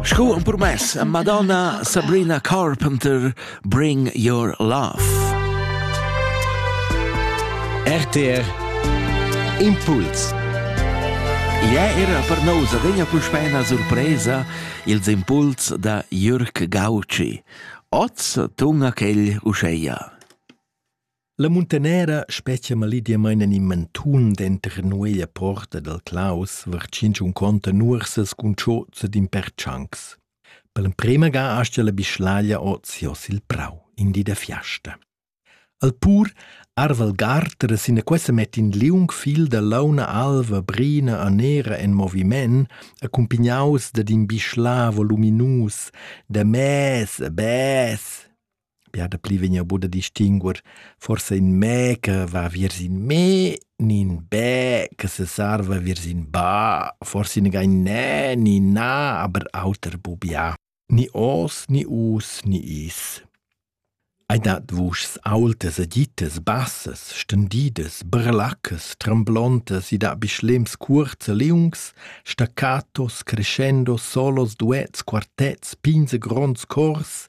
Sco un promess a Madonna Sabrina Carpenter Bring Your Love. RTR Impuls Ia era per nous adegna puspei una surpresa ils impuls da Jürg Gauci. Oz tunga quel uscheia. La muntanera spetga malidiamain en in mantun denter nueglia porta dal Claus vartschinch un conta nuorsas cun chozza d'in per tschancs. Per l'emprema ga astia la bischlaglia oz jos il prau, in di da fiasta. Al pur arval garter sina quessa met in liung fil da launa alva brina a nera en moviment, accumpignaus dad in bischla voluminus, da mes a bes. Bia dapli vegn buca da distinguer forsa in mè che va viers in me, ni in bè che sesarva viers in ba, forsi negai in nè ni in na, aber auter bu bia. Ni os, ni us, ni is. Ei dat vuschs aultas e gittas, bassas, stendidas, brelaccas, tremblontas, i dat bi schlems cuorts e liungs, staccatos, crescendo, solos, duets, quartets, pins e gronds cors,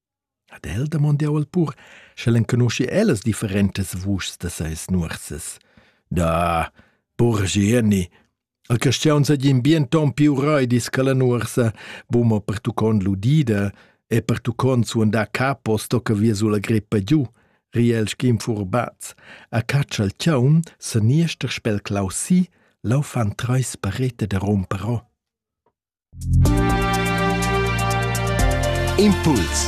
Ad el damond jau al pur, sch'el enconuschi ellas differentas vuschs da seis nuorsas. Da, pur Gieni, a Castiaun seigin bien ton più roidis che la nuorsa, buma pertuccond l'udida e pertuccond suondar capo sto che via sulla greppa giù, riel schim furbaz. A caccia il chaun, se niester spel clausi, lau fan treis parete da romperò. Impuls